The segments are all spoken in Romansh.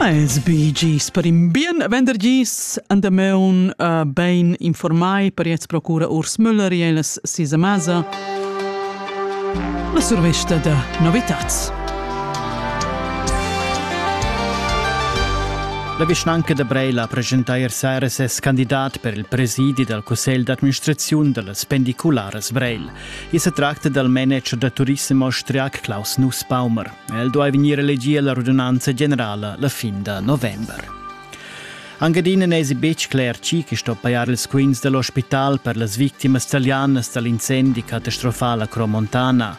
Es Bee Gees per in bien vendergis an da meun uh, bein informai per jetzt procura Urs Müller e las Sisa Masa la survesta da novitats. La vischnanca da Breila presenta ier sera ses candidat per il presidi dal Cussegl d'administraziun da las pendicularas Breil. I se tracta dal manager da turissem austriac Klaus Nussbaumer. El duai vegnir elegì alla radunanza generala la fin da november. Angadina n'èsi betg cler chi che sto pajar ils quints da l'ospital per las victimas talianas dal incendi catastrofal a Cromontana.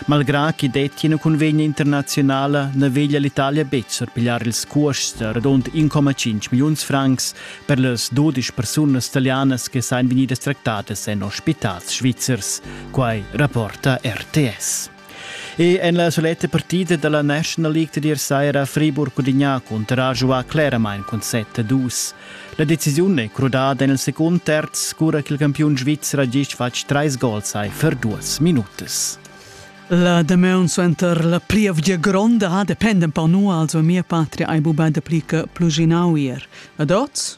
Malgrà ch'i dettia una convegna internazionala na veglia l'Italia betg surpigliar ils cuosts da radund 1,5 milliuns francs per las 12 persunas talianas che sain vegnidas tractadas en ospitals svizzers. Quai rapporta RTS. E en la soletta partida dalla National League da dir saira Friburg Cudigna cunterà giuà cleramain cun 7-2. La decisiun è crudada en il secund terz, cura che il campiun svizzer ha gist fatg trais gols ai per duas minutas. La damaun suenter la plievgia gronda ha dependent per nua, also mia patria ai bubà de plica pluginavier. Adots?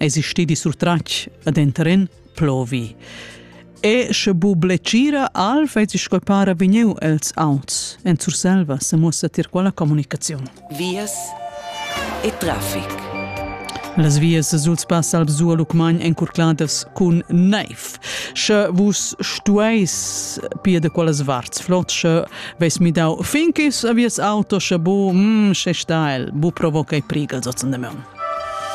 Esi stedi surtratg ad enteren plovi. E sche bu blecira al fezi scoipara vegniu els auts en Surselva se mussa tir quella comunicaziun. Vias e traffic. Las vias suls pass alb zuo lucmagn encurcladas cun neiv. Sche vus stueis pia de quelles varts flot, sche veis mi dau finkis a vies auto, sche bu, mm, sche sta el, bu provoca i prigel sotzen de meun.